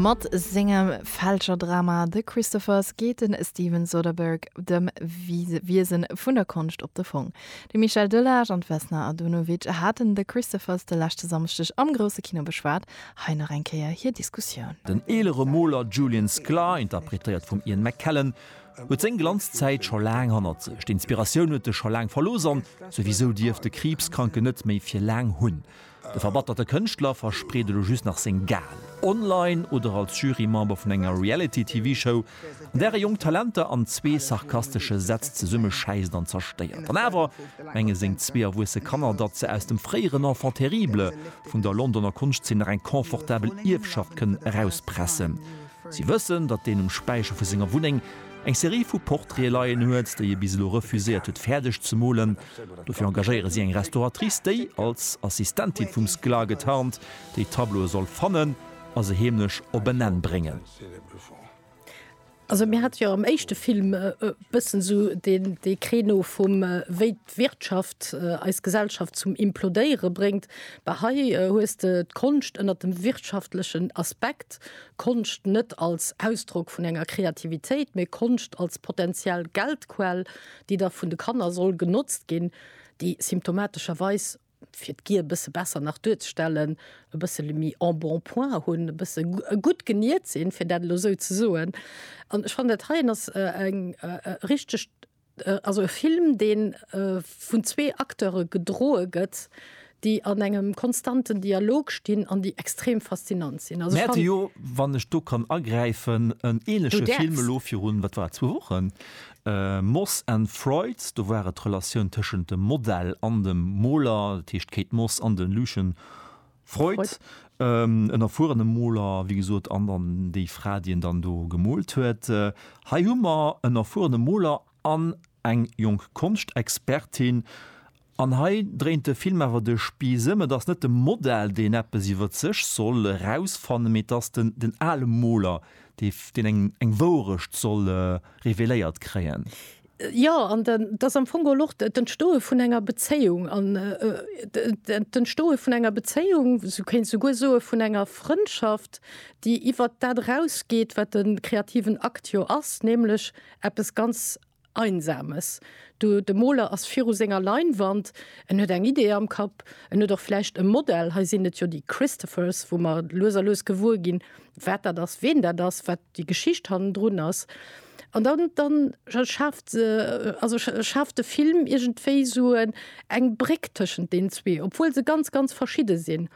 Mat sengem Fälscherdrama The Christophers geet de Steven Soderbergh dem Wiesen vun der Konscht op de Fong. De Michel Delage an d'Vesna Adunovic haten The Christophers de leschte Samschdeg am grousse Kino beschwat. Hei nach eng Kéier hir Diskussioun. Den eelere Moler Julian Sklar, interpretéiert vum Ian McKellen, huet seng Glanzzäit scho laang hannert sech. D'Inspiratioun huet e scho laang verlooss an souwisou dierft de Kriibskranken net méi fir laang hunn. De verbatterte Kënschtler verspreet elo just nach seng Gage, online oder als Jurymember vun enger Reality-TV-Show, an där e jonk Talenter an zwee sarkastesche Sätz zesummeschäisst an zerstéiert. An awer menge seng zwee erwuesse Kanner, datt se aus dem fréieren Enfant terrible vun der Londoner Konschtzeen nach eng confortabel Ierfschaft kënnen erauspressen. Si wëssen, datt deen um Späicher vu senger Wunneng eng Serie vu Portraite leien huet, déi e bis elo refuséiert huet fäerdeg ze molen. Dofir engagéiere si eng Restauratrice, déi, als Assistentin vum Sklar getarnt, déi Tableaue soll fannen a se heemlech op en Enn bréngen. Also mir hate jo am éischte Film e bëssen esou dee Creneau vum, wéi d'Wirtschaft eis Gesellschaft zum Implodéiere bréngt. Bah, hei hues de d'Konscht ënnert dem wirtschaftlechen Aspekt, Konscht net als Ausdrock vun enger Kreativitéit, mee Konscht als potentiell Geldquell. déi da vun de Kanner soll genotzt ginn, déi symptomatescherweis, fir d'Gier e bësse besser nach duerzestellen, e bëssele méi en bon point hunn, e bësse gutt geniert sinn, fir dat elo esou ze soen. An ech fannen, dat heien ass eng richteg, also e Film, dee vun zwee Acteure gedroe gëtt, déi an engem konstanten Dialog stinn an déi extrem faszinant sinn. Also ech fanne. Mä et ass jo, wann ech do kann agräifen, en ähnleche Film elo virun, wat war et, zwou Wochen, Moss and Freud, do war et d'Relatioun tëschent dem Modell an dem Moler, dat heescht d'Kate Moss an de Lucian Freud, en erfuerene Moler, wéi gesot, an dann déi Fra, déi en dann do gemoolt huet. Hei hu mer en erfuerene Moler an eng jonk Konschtexpertin. An hei dréint de Film awer de Spiiss ëm, Et ass net de Modell, deen eppes iwwer sech soll erausfannen, mee et ass den ale Moler, deen eng Wourecht soll reveléiert kréien. Jo, an et ass am Fong geholl och d'Entstoe vun enger Bezéiung, d'Entstoe vun enger Bezéiung, du kéints souguer soe vun enger Frëndschaft, déi iwwer dat erausgeet, wat de kreativen Akt jo ass, nämlech Eppes ganz Einsames. Du, de Moler ass viru senger Leinwand, en huet eng Idee am Kapp, en huet och vläicht e Modell, hei sinn et jo déi Christophers, wou mer lues a lues gewuer ginn, wat dat ass, ween dat ass, wat déi Geschicht hannendrun ass. An dann, dann schaaft, also schaaft de Film iergendwéi esou eng Bréck tëschent deenen zwee, obwuel se ganz, ganz verschidde sinn.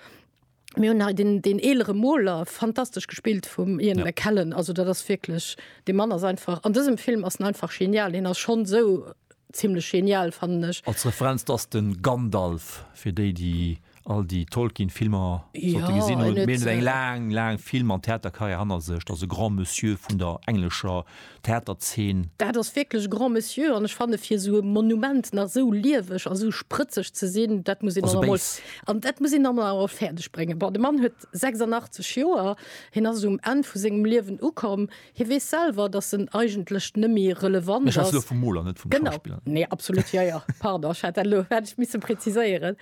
Mir hunn hei den, den eelere Moler, fantastesch gespillt vum Ian ja. McKellen. Also dat ass wierklech, de Mann ass einfach, an dësem Film ass en einfach genial, hien ass schonn esou ziemlech genial fannen ech. Als Referenz dass den Gandalf fir déi déi all déi Tolkien Filmer ja, gesinn hunn, meen eng äh, laang laang Film an Theaterkarriär hanner sech, ass e Grand Monsieur vun der englescher Theaterzeen. Dat ass wierklech Grand Monsieur an ech fanne fir esou e Monument nach esou lieweg a sou sprëtzeg ze sinn, dat muss een dann emol, an dat muss een dann emol awer fäerdeg bréngen. Bon, de Mann huet 86 Joer, hien ass um Enn vu sengem Liewen ukomm. Hie weess selwer, datt en eigentlech net méi relevant ass. Ech schwätze elo vum Moler, net vum Schauspiller. Genau, nee, absolut, jo, jo, pardon, ech hat dat elo, hätt ech misse preziséieren.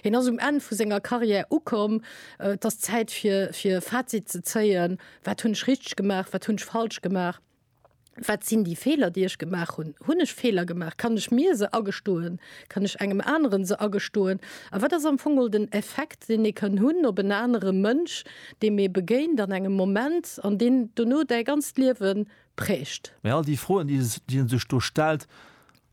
Hien ass um Enn vu senger Carrière ukomm. Et ass Zäit fir, fir e Fazit ze zéien. Wat hunn ech richteg gemaach? Wat hunn ech falsch gemaach? Wat sinn déi Feeler, déi ech gemaach hunn? Hunn ech Feeler gemaach? Kann ech mir se agestoen? Kann ech engem aneren se agestoen? A wat ass am Fong mol den Effekt, deen ee kann hunn op en anere Mënsch, deem ee begéint an engem Moment an deen dono däi ganzt Liewe prägt? Mä all déi Froen, déi en sech do stellt,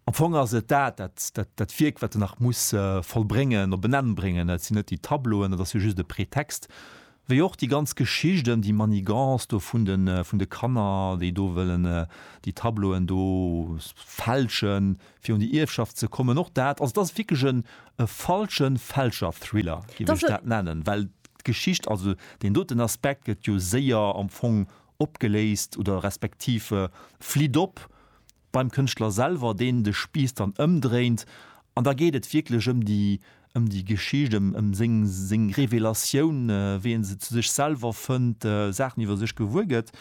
Am Fong ass et dat, dat, dat Wierk, wat en nach muss vollbréngen, op en Enn bréngen. Et sinn net déi Tableauen, dat ass jo just e Pretext. Wéi och déi ganz Geschicht ëm déi Manigance do vun de, vun de Kanner, déi do wëllen déi Tableauen do fälschen, fir un déi Ierfschaft ze kommen. Och dat, also et ass wierklech e falsche Fälscher-Thriller, géif ech dat nennen, well d'Geschicht, also deen doten Aspekt gëtt jo séier am Fong opgeléist oder respektiv flitt op. beim Kënschtler selwer, deen de Spiiss dann ëmdréint an da geet et wierklech ëm déi, ëm déi Geschicht, ëm, ëm seng, seng Revelatioun, wéi e se zu sech selwer fënnt, Saachen iwwer sech gewuer gëtt.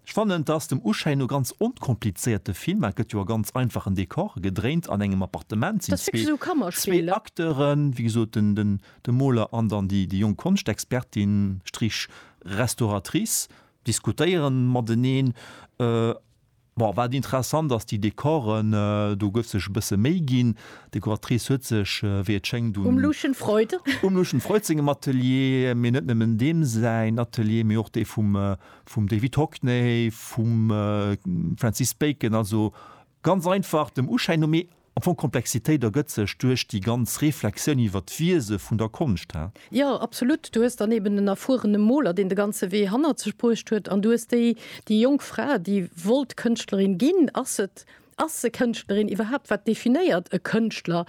Ech fannen, et ass dem Uschéin no ganz onkomplizéiert, de Film, et gëtt jo a ganz einfachen Dekore gedréint, an engem Appartement sinn zwee, zwee Acteuren, wéi gesot den, den, de Moler an dann déi, déi jonk Konschtexpertin, Strich, Restauratrice, diskutéieren mateneen. Bon, wat interessant ass, déi Dekoren, do gouf sech e bësse Méi ginn. D'Dekoratrice huet sech, wéi et schéngt, un. Um Lucien Freud. Um Lucien Freud sengem Atelier, mee net nëmmen deem säin Atelier, mee och dee vum, vum David Hockney, vum Francis Bacon, also ganz einfach dem Uschäin no. Mee Am Fong, d'Komplexitéit ergëtt sech duerch déi ganz Reflexioun iwwer d'Wiese vun der Konscht, he? Jo, absolut. Du hues dann eben en erfuerene Moler, deen de ganze Wee hannert sech bruecht huet, an du hues déi, déi jonk Fra, déi wollt Kënschtlerin ginn. Ass se, ass se Kënschtlerin iwwerhaapt? Wat definéiert e Kënschtler?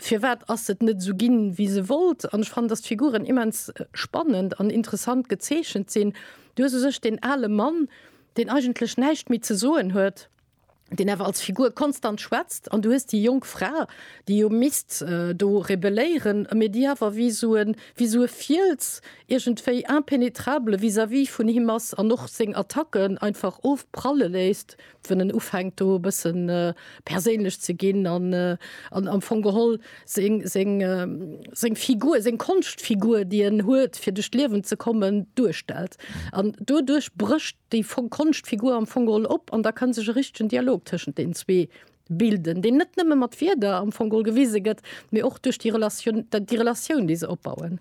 Firwat ass se net esou ginn, wéi se wollt? An ech fannen, dass d'Figuren immens spannend an interessant gezeechent sinn. Du hues u sech deen ale Mann, deen eigentlech näischt méi ze soen huet. deen awer als Figur konstant schwätzt, an du hues déi jonk Fra, déi jo misst do rebelléieren, mee déi awer wéi esou e, wéi esou e Fiels iergendwéi impenetrable vis-à-vis vun him ass an och seng Attacken einfach ofpralle léisst, wou en ufänkt do e bëssen perséinlech ze ginn an am Fong geholl seng, seng, seng Figur, seng Konschtfigur, déi en huet, fir duerch d'Liewen ze kommen, duerstellt. An doduerch brécht déi Konschtfigur am Fong geholl op an da ka sech e richtegen Dialog tëschent deenen zwee bilden, deen net nëmme mat Wierder am Fong geholl gewise gëtt, mee och duerch déi Relatioun, déi Relatioun, déi se opbauen.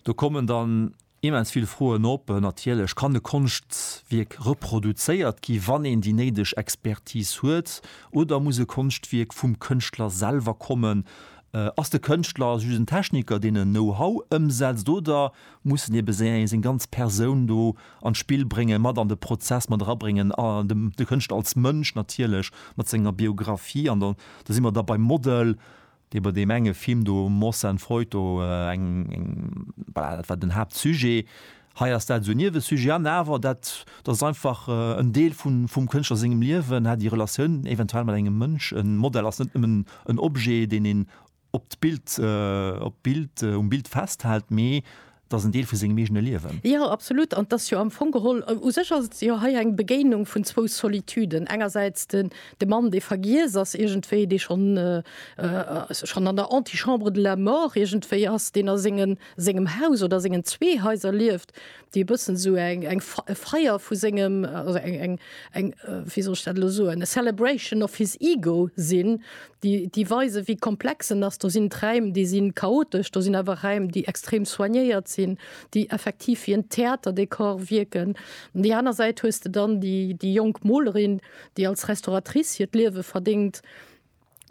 Do kommen dann Immens vill Froen op. Natierlech kann e Konschtwierk reproduzéiert gi wann een déi néideg Expertis huet, oder muss e Konschtwierk vum Kënschtler selwer kommen? Ass de Kënschtler just en Techniker deen en Know-how ëmsetzt, oder muss en ebe seng seng ganz Persoun do an d'Spill bréngen, mat an de Prozess mat erabréngen, de Kënschtler als Mënsch natierlech mat senger Biographie? An da si mer da beim Model, dee bei deem enge Film do, Morse and Freud, do eng, eng, voilà, dat war den Haaptsujet, hei ass dat esou e Niewesujet an awer dat, dat ass einfach en Deel vun, vum Kënschtler sengem Liewen, hat déi Relatioun eventuell mat engem Mënsch, e Modell ass net nëmmen en Objet, deen een op d'Bild, op d'Bild, um Bild festhält, mee Et ass en Deel vu sengem eegene Liewen. Jo, absolut. An et ass jo am Fong geholl, u sech ass et jo hei eng Begéinung vun zwou Solituden. Engersäits de Mann, dee vergiess ass iergendwéi, dee schonn schonn an der Antichambre de la mort iergendwéi ass, deen a senge sengem Haus oder a sengen zwee Haiser lieft, déi e bëssen esou eng eng e Feier vu sengem also eng eng eng wéi soll ech dat elo soen, a celebration of his ego sinn. déi, déi weisen, wéi komplex en ass. Do sinn d'Räim, déi si chaotesch, do sinn awer Räim, déi extrem soignéiert sinn, déi effektiv wéi en Theaterdekor wierken. An déi aner Säit hues de dann déi, déi jonk Molerin, déi als Restauratrice hiert Liewe verdéngt,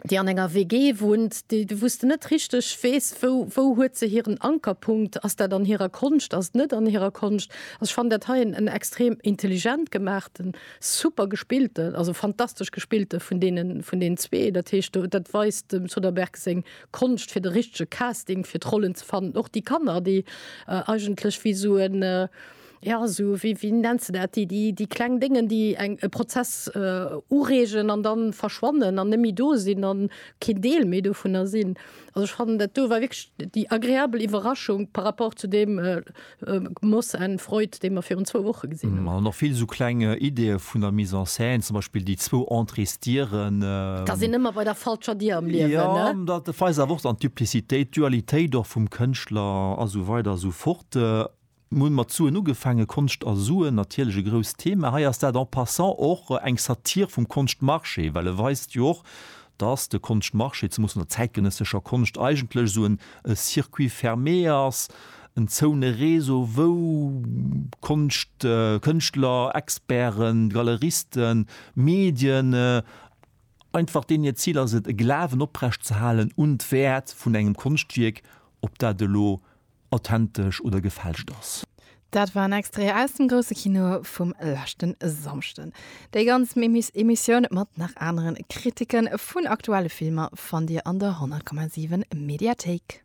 déi an enger WG wunnt, déi, wou s de net richteg weess, wou, wou huet se hiren Ankerpunkt, ass dat an hirer Konscht, ass et net an hirer Konscht? Also ech fannen dat hei en extrem intelligent gemaachten Super gespillte, also fantastesch gespillte vun deenen, vun deenen zwee. Dat heescht, do, dat weist dem Soderbergh seng Konscht, fir de richtege Casting fir d'Rollen ze fannen. Och déi Kanner, déi eigentlech wéi esou en, ja, esou wéi, wéi nenns de dat, déi, déi, déi kleng Déngen, déi eng, e Prozess ureegen an da verschwannen an net méi do sinn an keen Deel méi dovunner sinn. Also ech fannen dat do war wirklich déi agréabel Iwwerraschung par rapport zu deem Moss and Freud, dee mer virun zwou Woche gesinn hunn. An dann och vill esou kleng Ideeë vun der Mise en scène, zum Beispill déi zwou Entréesdieren. Da sinn ëmmer bei der falscher Dier am Liewen, ne? Jo, dat weist awer och dann d'Duplicitéit, d'Dualitéit och vum Kënschtler a sou weider a sou fort. Mir hunn mat Suen ugefaangen, Konscht a Suen, natierlech e grousst Thema. Hei ass dat en passant och eng Satire vum Konschtmarché, well e weist jo och, dass de Konschtmarché, zemoos an der zäitgenëssescher Konscht, eigentlech esou en circuit fermé ass, en zoune Réseau, wou Konscht, Kënschtler, Experten, Galeristen, Medien, einfach deenen hiert Zil ass et, e Glawen oprecht ze halen un d'Wäert vun engem Konschtwierk, ob dat elo, authentesch oder gefälscht ass. Dat war en Extrait aus dem grousse Kino vum leschten Samschden. Déi ganz Emissioun mat nach aneren Kritiken vun aktuelle Filmer fannt dir an der 100,7 Mediathéik.